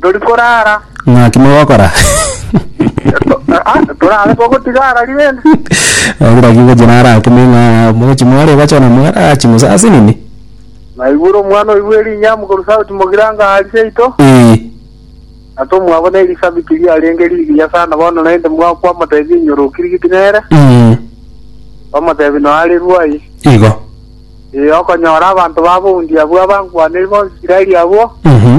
tori korara. Ng'aki mogokora? Ah, torare togotiga arari rende. Agira ki gochia nara akime ng'a mochi more bachona mogara achi musasi nini? Naigure omwana oigwe rinyamu koru sauti mogiranga ari seito. Eh. Ato mwabo ne Elisabeti riarenge rigiya sana bono naende mwakwa motebi enyoro okirigiti nere. Mm. Omotebi no are ruai. Igo. Eh, okonyora abanto babo undi abwo abankwaneri bonsi Isiraeli abwo. Mhm.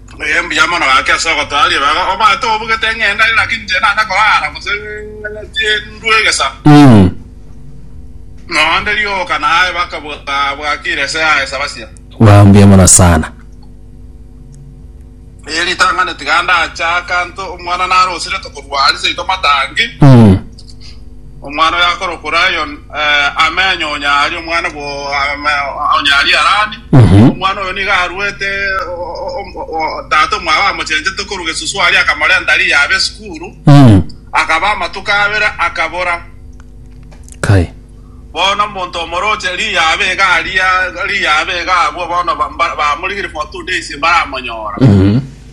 Ee, mbuya mono gaki ase ogotoa ribaga. Obwate obugete ng'ende aye, lakini inche naende korara gose ndue egesa. Mm. Nonya onde rioka naye bakabwakire ase aye sabasia. Wow, mbuya mono sana. Ee, ritang'ani tiga ndache akanto, omwana narosire tokorwa aria seito matangi. Mm. Omwana oyo akorokwa Rayon amenye onya aria omwana bwo onya aria Harani. Omwana oyo nigo aruete tata omwabo amochenchete korwa gesusu aria akamorenta riya abe esukuru. Akaba amatuko abere akabora. Kai. Bono omonto omoroche riya abe iga aria riya abe iga abwo bono ba- ba- bamorigirie for two days mbaramonyora.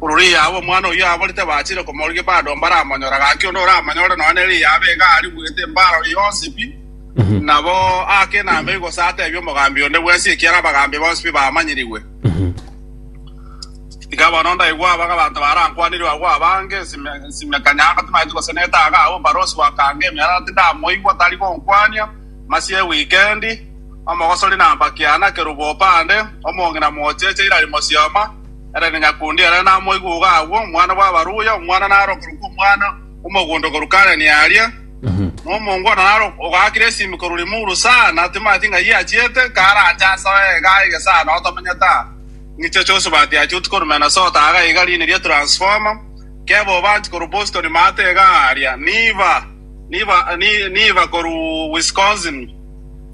Ororo riaaba omwana oyio aborete bachire komorigia bado mbaramonyore, gaki onde oramonyore nonya nere riaaba iga arigwete embaroro yonsi pi. Nabo aake nambe gose ateebie omogambi onde bwensi ekiagera abagambi bonsi pi bamanyirigwe. Iga bono ndaigwe aba abanto barankwanirwe agwo abange, nsimeka nyang'ati maiti gose netaage agwo omobarosi bw'akanga emerara tindamoigwa tari gonkwania, masia e wikendi, omogosori na mpakiana, kerubo opande, omong'ina mocheche, irari mosioma, Ere na nyakundi ere namoigwe-ogo agwo, omwana bw'abaruya, omwana narokerwe kw'omwana omogondo korwa Kanani aaria. Na omongwana naro ogakire esimi korwa rimuru sana, timanyeti ng'ai achiete, karache ase oye iga aige sana otamenyete aa. Ng'iche Chosibati achuti korwa Minnesota aga iga riini ria Transformer, Keba Obanti korwa Boston Maate iga aaria, Niva, Niva, Ni, Niva korwa Wisconsin,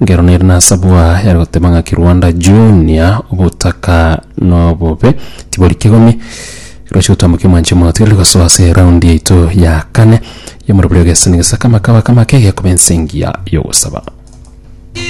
Ngero nere nasabwa yare goteba ng'a Kirwanda Junior obotaka nobobe tibori kegomi. Roche gotambokia omwanche omogote ore gosoa ase eround yaito ya kane yomoroberi ogesani gesakama kabakama ake gekoba ensingia yogosaba.